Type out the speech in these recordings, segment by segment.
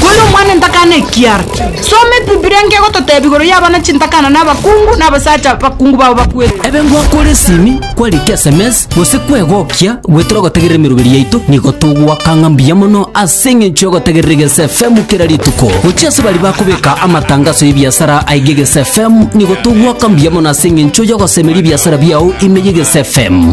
Kore omwana entakana ekiara. Soma Ebibilia nkegototeeba igoro y'abana chintakana na abakungu na abasacha abakungu babo bakwete. Ebe ngwakore esimi, kwarika esemesi, gose kwegokia, goetera ogotegerera emeroberi yaito, nigo togwaka ng'a mbuya mono ase eng'encho y'ogotegerera Egeso FM kera rituko. Gochia ase baria bakobeka amatangaso y'ebiasara aiga Egeso FM, nigo togwaka mbuya mono ase eng'encho y'ogosemeria ebiasara biao ime y'Egeso FM.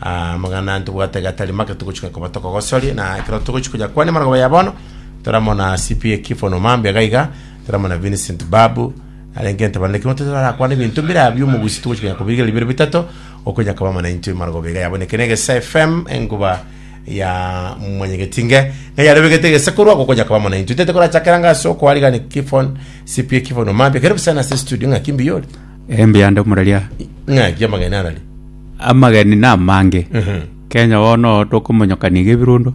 Amang'ana ntobwate gatari make togochika koba tokogosorie, na ekero togochia konya kwane amarogoro ya bono, toramona CPA Kifon Omambi iga iga, toramona Vincent Babu, arenge ntabarane ekero tote barakwana ebinto mbire abio omogusi togochia konya kobirigeria bibere bitato, okonya koba mana intwe amarogoro iga yaboneke na egesa FM enguba ya mwanyegeti nge, ng'a yarebegete egesa korwa agwo okonya koba mana intwe. Tete korachakera ng'a ase okoarigani Kifon, CPA Kifon Omambi, ekero bisana ase studio ng'aki mbiyore? Embe yande omuraria. Ng'aki amagena arari. Amageni namange. Kenya bono tokomonyokania iga ebirundo.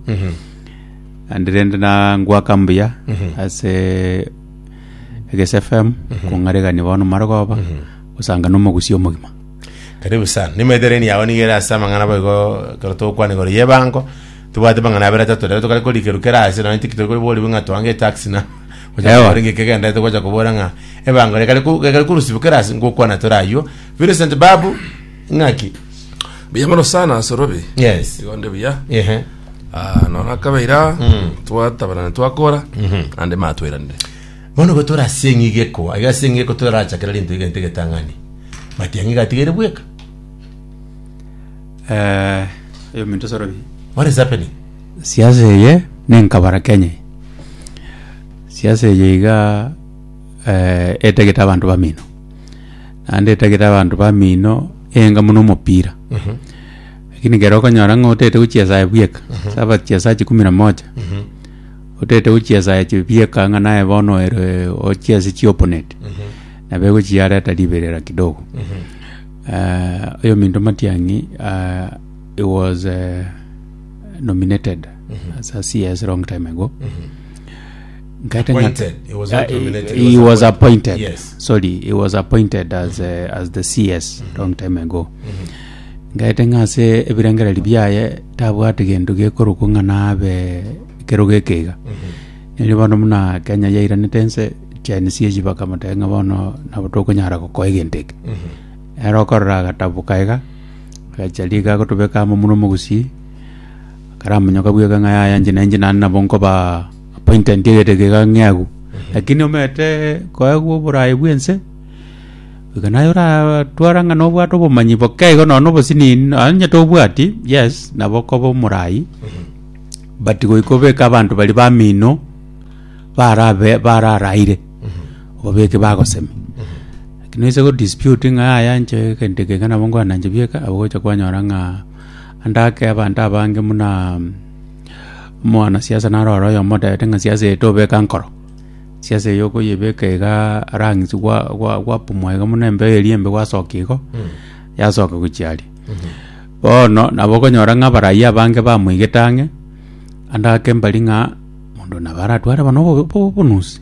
Naende rende na ngoaka mbuya ase Eges FM kong'aregani bono mare goba gosanga na omogusia omogima. Karibu sana. Nimaitoreni yao nigo ere ase amang'ana abo igo ekero togokwana igoro y'ebango, tobwate amang'ana abere atato nabo tokare korikerwa kera ase nonya inche ki tokore koriborigwe ng'a toange etaxi na Ewa. Gocha koboora ng'a ebango rekare ko- rekare korusibwa kera ase ngokwana tore aywo, Vincent Babu ng'aki. Buya mono sana Sorobi. Yes. Igo nde buya. Ehe. Ah, nona kabeira twatabarana twakora ande matweranire. Bono go torasie eng'igeko, aiga ase eng'igeko torachakera rinto egento egetang'ani. But eng'iga atigere bweka. Eh, yo minto sorobi. What is happening? siasa eye nenkabara kenya eye. siasa eye iga eh, etagete abanto bamino naende etagete abanto bamino enga buna omopira lakini ekero okonyora ng'a otaete gochia esaa ya bweka sabati chia saa chikumi na moja otaete gochia esaa ya chibieka ng'a naye bono ere ochie ase chioponeti nabo egochi yareta riberera kidogo Eh, oyominto matiang'i ah, he was eh, nominated as a CS long time ago Nkaete ng'a- Appointed. He was not Uh, nominated, he, he was appointed. Yes. Sorry, he was appointed as uh, as the CS long time ago. Ngaete ng'ase ebirengereri biaye tabwate gento gekorokwa ng'a nabe ekero geke iga. Nere bono muna Kenya yairanete ense Gen Z echi bakamoteba ng'a bono nabo tokonyara gokoa egento eke. Ere okorora agatabuka iga agacha riga agotobeka amo muna omogusii akaramonyoka bweka ng'a yaya inche na inche naende nabo nkoba Appointment egete iga ng'eagu. Lakini omanyete koegwa oborayi bw'ense, iga naye oratwara ng'a nobwate obomanyi boke igo nonya na obosinini nonya onye tobwati, yes, nabo okoba omorayi, but goika obeke abanto baria bamino barabe bararaire, obabeke bagosemi. Lakini noise go dispute ng'a yaya inche egento eke iga nabo nkwana inche bieka, nabo ogocha kwanyora ng'a ande ake abanto abange buna. Mwanasiasa narore oyomo otebete ng'a siasa eye tobeka nkoro, siasa eye okoyebeka igaa rang'isi gwa- gwa- gwapumwa iga buna embeyo eria embe gwasokia igo, yasoka gochia aria. Bono nabo okonyora ng'a abarayia abange bamoigete ang'e, ande ake mbari ng'a mondo nabo aratware bono obo- obonusi.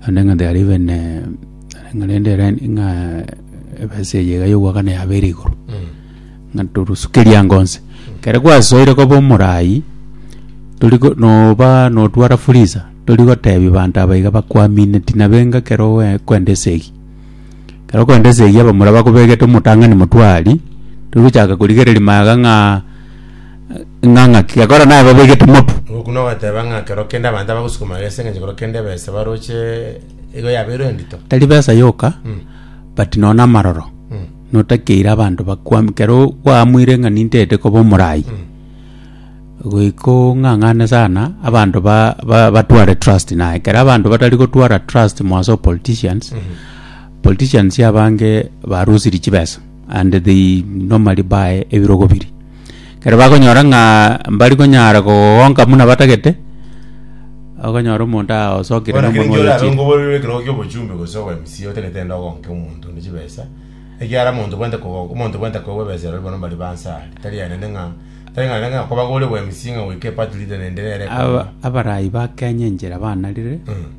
Naende ng'a there even ng'a rende ere ng'a ebesa eye iga y'ogoakana yabeire igoro ng'a torusukerie ango onsi ekero gwasoire koba omoraai tori go noba notwara fuliza tori gotebia abanto aba iga bakwamine tinabenga ekero oe- okwenda esegi ekero okwenda esegi abamura bakobegete omotang'ani motwari tori gochaka korigereria magega ng'a. Ng'a ng'aki gekora naye babegete motu. Ngokuna ogateba ng'a kero kende abanto abagosukuma gese engencho kero kende ebesa baroche igo yabeirwe endito. Tari besa yoka, Mm. but nonya na amaroro. Mm. Notakeire abanto bakwam- kero kwaamwire ng'a ninteete koba omoraai, Mm. goika ong'ang'ane sana abanto ba- ba- batware trust naye. Kero abanto batari gotwara trust mwa ase opoliticians, Mhm. politicians abange barusirie chibesa. and they normally buy ebirogo biria. Ekero bakonyora ng'a mbari konyara kogonka buna batagete, okonyora omonto aosokire Bono naki nomonwa ninki orare oyochire. onkoborerwe ekerogo kia obochumbe gose obo MCA otagete ende ogonke omonto onde chibesa, ekiagera omonto bwente kogo- omonto bwente koegwa ebesa eroria bono mbari bansa are. Tari aye naende ng'a, tari ng'a naende ng'a kobagore obwa MCA ng'a goika eparty leader naende nere Aba- ekorwa. abarayi ba Kenya enchera banarire, Mm.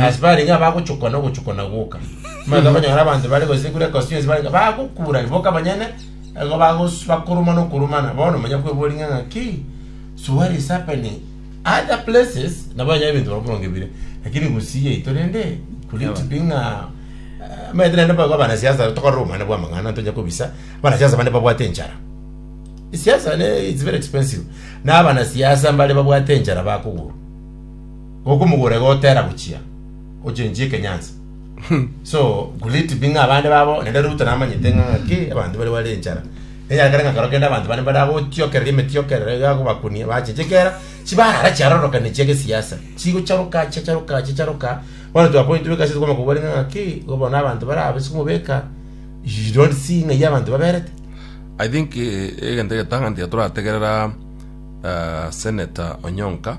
Ase barenge abagochokwa nogochokwa na goka, nibaisa konyora abanto bare gosigura ekosi yonsi barenge bagokuurania boka abanyene, nigo bagos- bakorumana okorumana. Bono manya kwebori ng'a ng'aki, so what is happening? Other places nabo onye ebinto barabwo boronge bire, lakini Gusii yaito rende could it be ng'a eh, omanyete rende boigo abanasiasa tokorora obomano bwa amang'ana ntonya kobisa, abanasiasa bande babwate enchara. Siasa ne it's very expensive. Na abanasiasa mbare babwate enchara bakogorwa. Gokumugura igo otera gochia ochenchie ekenyansi. So could it be ng'a abande babo naende Ruto namanyete ng'a ng'aki abanto baria bare enchara. Enyara kare ng'a kero kende abanto bane bare agotiokerera emetiokerero iga agobakunia bache chikera chibarara chiarorokani chia gesiasa. Chigocharoka chiacharoka chiacharoka bono to a point where ekasi tokwama kobua ring'o ng'aki igo bono abanto bare aba ase komobeka you don't see ng'a eyio abanto baberete. I think eh, egento egetang'ani tiga torategerera eh, Senator Onyonka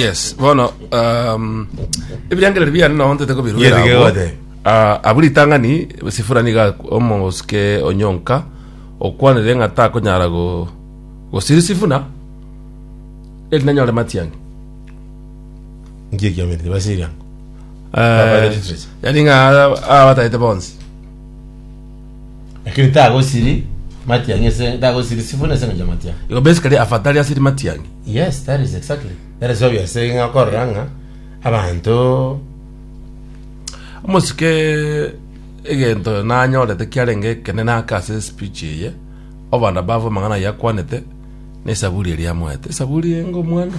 yes bono um, ebirengereri biane nao ntete kobiruera Yeri abwo. gegode. Ah, abwo ritang'ani sifura niga omosike onyonka okwanire ng'a takonyara go- gosiri sifuna eri nanyore matiang'i Ngiye kiamete tibasiri ango. Eh, Baba the literacy. yani ng'a abatagete bonsi Lakini tagosiri matiang'i ase tagosiri sifuna ase engencho y'amatiang'i. Igo basically afatari asiri matiang'i. Yes, that is exactly. That is obvious ase ng'a okorora ng'a abanto Omosike egento nanyorete kiarenge ekenene ake ase speech eye, obanda bavu amang'ana ayio akwanete, na esaburi eria amoete. Esaburi enga omwando.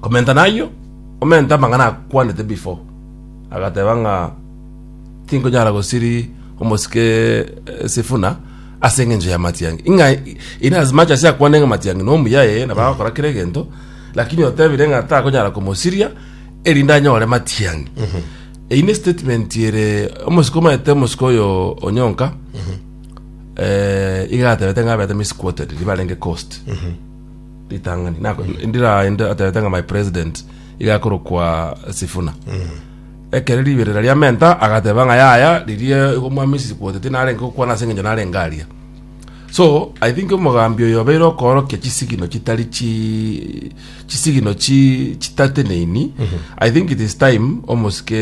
Komenta nayio, omente amang'ana akwanete before, agateba ng'a tinkonyara gosiri omosike eh, Sifuna ase engencho ya matiangi. Ing'a in as much as akwane ng'a matiangi no omuya ee nabo agakora kera egento, lakini otebire ng'a takonyara komosiria erinde anyore matiangi. Eyi ne statement ere omosike omaete omosike oyo onyonka eh, iga atebete ng'a abete misquoted ribarenge cost. ritang'ani nako ndira inde aterete ng'a my president iga akorokwa sifuna ekere riberera ria menta agateba ng'a yaya ririe igo mwamisi kwotete narenge gokwana ase eng'encho narenge aria so i think omogambi oyo obeire okoorokia chisigino chitari chi chisigino chi chitateneini i think it is time omosike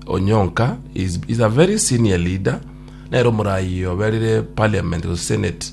onyonka is, is a very senior leader nere omorayi oberire parliament gose senate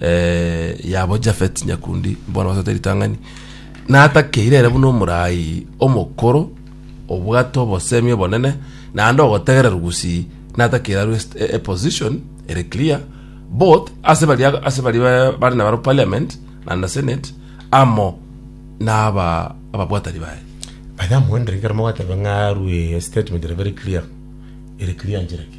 yabo Jafet nyakundi bono basate ritang'ani, natakeire ere buna omorai omokoro obwate obosemi obonene naende ogotegererwa gusii, natakeire arwe est- e- eposition ere clear both ase baria ase baria ba- bare nabaro parliament na na senate amo na aba ababwatani baye. By the way, amogendereri ekero mogateba ng'a arwe statement ere very clear, ere clear nchera ki?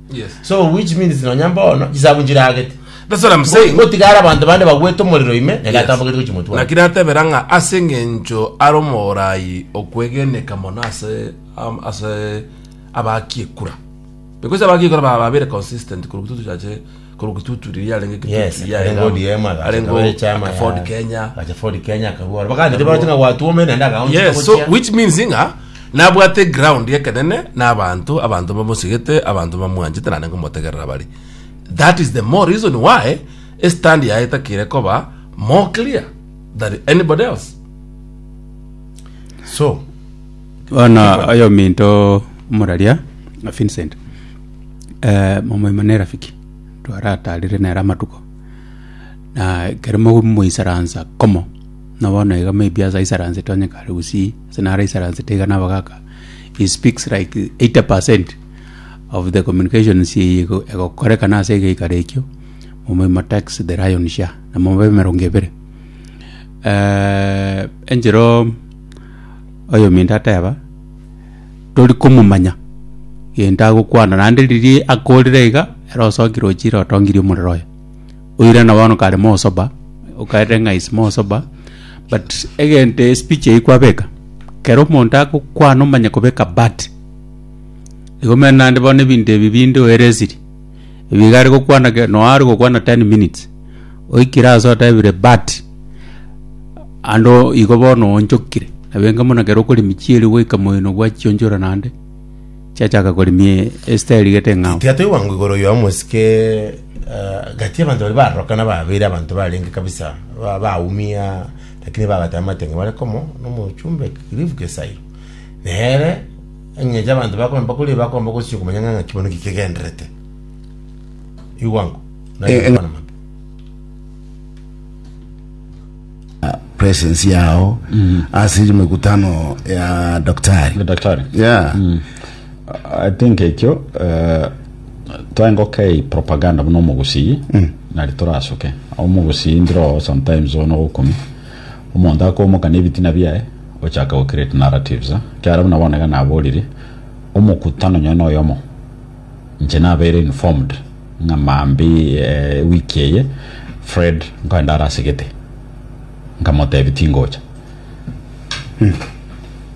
Yes. so which means nonya mbono chisabu nchiragete That's what I'm saying. gotigara abanto bande bagwete omorero ime Yes. negatambogete gochi motwe naki natebera ng'a ase eng'encho are omoraai okwegeneka mono ase am- ase abakiekura because abakiekura baba babere consistent korwa tutuchache korwa kituturi riria arenge kituturi Yes, riria arenge arenge ODM, agacha arenge akaba echama ya- Ford Kenya agacha Ford Kenya akarwara. Bakagenda bache nga gwatu ome naende akaoncha yes so gochia. which means nga nabwate ground ekenene na abanto abanto bamosigete abanto bamwanchete nane ngomotegerera bare that is the more reason why estand yaye etakire koba more clear than anybody else So, Bono oyominto omoraria Vincent, eh, momoima na erafiki twarataarire nere amatuko, na ekero momoisaransa komo, na bono iga maybe ase aisaransete onye kare gusii, ase naro aisaransete iga nabo gaka, he speaks like 80 percent of the communications eye ego- egokorekana ase egeikaro ekio, omoimo takes the lion's share, na mobe emerongo ebere. Eh, enchero. Oyominto ateba, Tori komomanya gento agokwana, naende riria akorire iga, ere osokire ochire otongirie omorero oye. Oirana bono kare mosoba, okaete ng'a is mosoba, but egento espeech eyio kwabeka, kero omonto agokwana omanye kobeka but. Igo omanyete naende bono ebinto ebi binde oeresiri. Ebiga are gokwana ke- noa are gokwana 10 minutes oikire ase otebire but ando igo bono onchokire nabenga buna kero okori michieri goika moino gwachionchora nande chiachaka korimie esita erigete eng'ao Tiga toigwa ngwa igoro ya omosike eh, gati y'abanto baria barorokana babere abanto barenge kabisa ba- baumia lakini babatama amate ng'a bare komo nomochumbe Cliff Gesairo nere Engecho abanto bakomba koria bakomba gosio komanya ng'a ng'aki bono gikegenderete. Igwa nko. Eh, eh. Naye mabe. presence yao ase iri mikutano ya daktari daktari yeah i think ekio uh, twengokei propaganda buna omogusii nari torasoke omogusii ndiro sometimes ono gokumi Omonto akomoka nebitina biaye, ochaka go create narratives, ekiagera buna bono iga naborire, omokutano onye noyomo, inche nabeire informed, ng'a mambi ewiki eye, Fred nkoenda are ase gete, nkamotebi tingocha.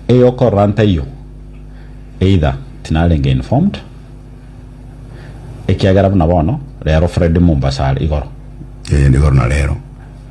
Eyo okorora ntaiyo, either tinarenge informed, ekiagera buna bono, rero Fred Mombasa are igoro. Eeh, nigoro na rero.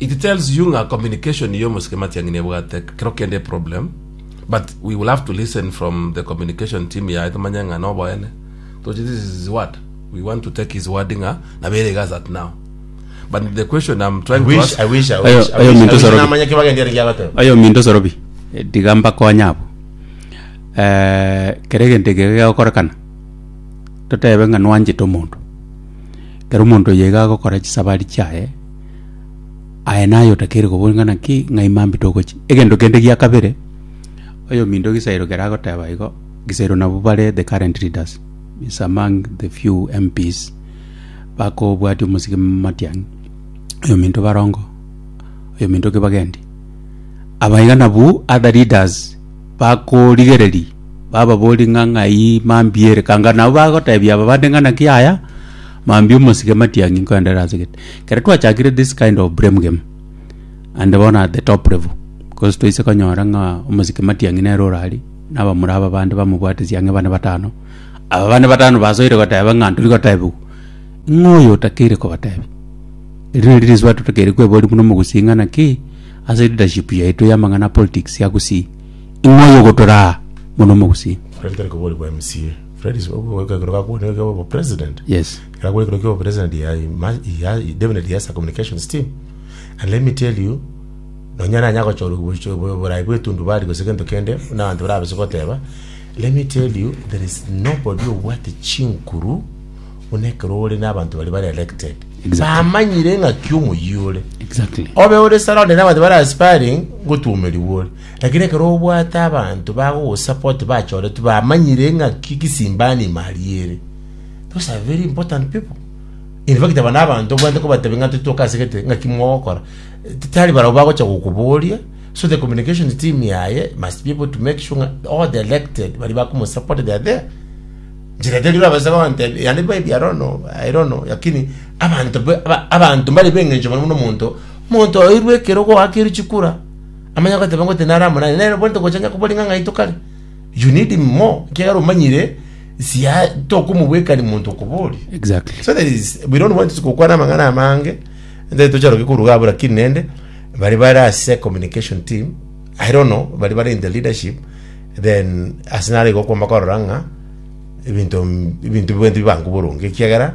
It tells you ng'a communication y'omosike matiang'i nebwate kero kende eproblem but we will have to listen from the communication team yaye tomanye ng'a noboene toche this is his word we want to take his word ng'a nabere iga as at now but the question I'm trying to ask ayo minto sorobi tiga mbakonye abo Eh, kere egento eke gegokorekana totebe ng'a nwanchete omonto kero omonto oyo iga agokora chisabari chiaye Aye naye otakeire koboria ng'a naki ng'ai mambia togochia. Egento kende gia kabere, oyominto egesairo kere agoteba igo, egesairo nabwo bare the current leaders is among the few MPs bakobwatia omosike matiang'i, oyominto barongo, oyominto kibagendi. Aba iga nabwo other leaders bakorigereria bababorie ng'a ng'ai mambia ere kanga nabo bagotebia aba bande ng'a naki yaya Mambia omosike matiang'i nkoendera ase gete. Kere twachakire this kind of blame game and bono at the top level because twaise konyora ng'a omosike matiang'i nere orari na abamura aba bande bamobwate siang'e bane batano aba bane batano basoire goteba ng'a ntori gotebiwa ng'a oyo otakeire kobatebia eri neri risuba totakeire kweboria buna omogusii ng'a naki ase leadership yaito y'amang'ana a politics ya gusii ng'a oyo ogotoraa buna omogusii Korende tari koborigwa MCA. Felix obogoe kegoro gakobuna ekero obo president. Yes. Ekero akobuna ekero kiobo president ya ya definitely he has a communications team. And let me tell you nonya nanya gochora obucho borai bwetundu bari gose gento kende na abantu bari abase goteba let me tell you there is nobody obwate chinkuru buna ekero ore na abantu bari bari elected. Exactly. Bamanyire ng'aki omoyio ore. Exactly. Obe ore sara onde na abantu bari aspiring gotuomerigwa ore. Lakini ekero obwate abanto bagogosapoti bachoretwe bamanyire ng'aki gisimbani imari ere, those are very important people. In fact aba nabanto obwate kobatebi ng'a totoke ase gete ng'aki mogokora. Tari barabwo bagocha gokoboria, so the communication team yaye must be able to make sure ng'a all the elected baria bakomosupport they are there. Njere teri orabase gontebia, yande maybe I don't know, I don't know, lakini abanto be- aba- abanto mbare b'eng'encho mono mono omonto, omonto oirwe ekero goakerwe chikura, amanye agoteba ngotiti nare amo naye, nere bw'ente gochancha kobua ring'ana ng'a itokare. You need him more, ekiagera omanyire sia tokomobwekani monto okoboria. Exactly. So there is we don't want to gokwana amang'ana amange nde tocharoke koruga abwo lakini nende bari bare ase communication team I don't know bari bare in the leadership then ase nare igo okwama korora ng'a ebinto ebinto bwenti bibange boronge ekiagera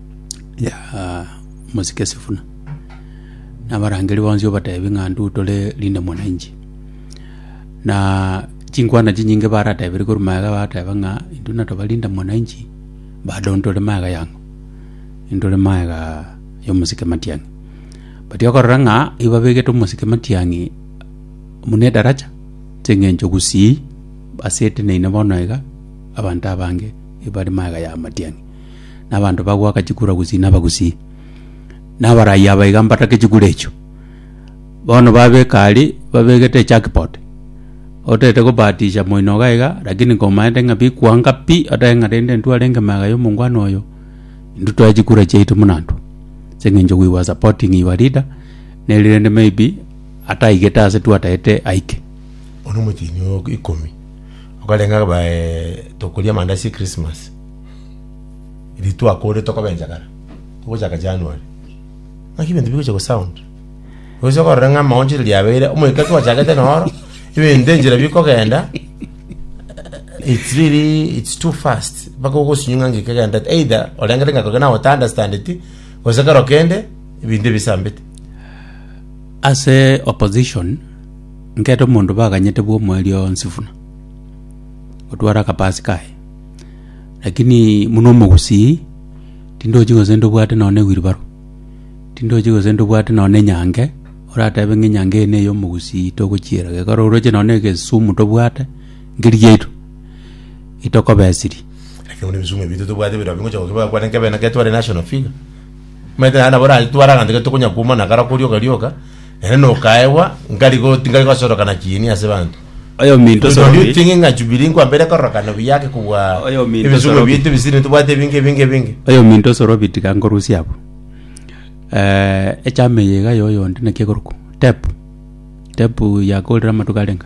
ya mosike Sifuna, na abarangeri bonsi obatebi ng'a ndu tore linde mwananchi. Na chinkwana chinyinge baratebirie korwa magega bateba ng'a indu natoba linde mwananchi bado ntore magega yang'o? Intore magega ya omosike Matiang'i. But okorora ng'a ibabegete omosike Matiang'i buna edaracha, ching'encho gusii ase eteneine bono iga, abanto abange ebare magega ya Matiang'i. na abanto bagoaka chikura gusii na abagusii, na abarai aba iga mbatake chikura echio. Bono babeka aria, babegete ejackpot, otagete kobahatisha moino iga iga, lakini komanyete ng'a bikuanga pi, otake ng'a rende intwe arenge magega ya omongwana oyo, intwe twae chikura chiaito buna intwe, ase eng'encho we were supporting your leader, nere rende maybe ataigete ase twatagete aike. Bono omochenu ogo ikomi, okarenge akabae tokoria amandasi ya Christmas. Riria twakore tokoba enchakara, togochaka January, naki ebinto bigocha go sound. Oise okorora ng'a amaoncho riria riabeire, omoika twachagete noro, ebinto enchera bikogenda, it's really, it's too fast, mpaka ogosinywa ng'a ng'iki kegendete, either orengete ng'a kogenda otaandastandeti, gose kero kende, ebinto ebisambete. Ase opposition, nkere omonto baganyete bwa omweri onsi buna, otware akabasi kaye. Lakini buna omogusii, tindochi gose ndobwate nonya ewilbaro, tindochi gose ndobwate nonya enyanke, oratebe ng'a enyanke eye neye omogusii togochiera. Ekero oroche nonya egesumu tobwate, nkeri giaito, etokobesirie. Lakini buna ebisumu ebi totobwate ebero abwo ngocha gokebeka kwane nkebe naki tware national figure. Omanyete naende nabo oratware aganto gete tokonya koumana kare okorioka rioka. Ere nokaegwa, nkari go, tinkari gosorokana kiini ase banto. Oyominto Do you osoroki. think ng'a Jubilee nkwambere kororokana buya ake kobua Oyo minto ebisungo sorobi. bieto ebisiri ntobwate ebinge ebinge ebinge? oyominto osorobi tiga nkorusia abwo Eh, echama eye iga yoyonde naki egorokwa tepu tepu yakorire amatuko arenga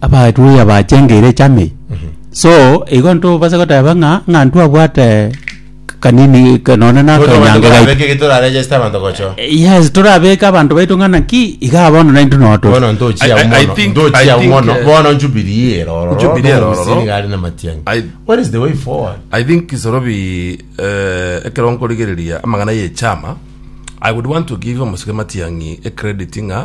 abaruya bachengeire echame so igo ntobase goteba ng'a ng'a ntwabwate kanini ka- nonye na Tore abanto akanyango gaito barabeke getoraregeste abanto gocho. yes torabeke abanto baito ng'a naki iga bono naintwe nogo tore Bono ntochia I- I- I mono, think- ntochia I think, mono, eh, bono Jubilee ero ororo, Jubilee ero nomomisiri ororo. gari na matiang'i. I- What is the way forward? i think kisorobi eh, ekero nkorigereria amang'ana y'echama i would want to give omosike matiang'i ecredit ng'a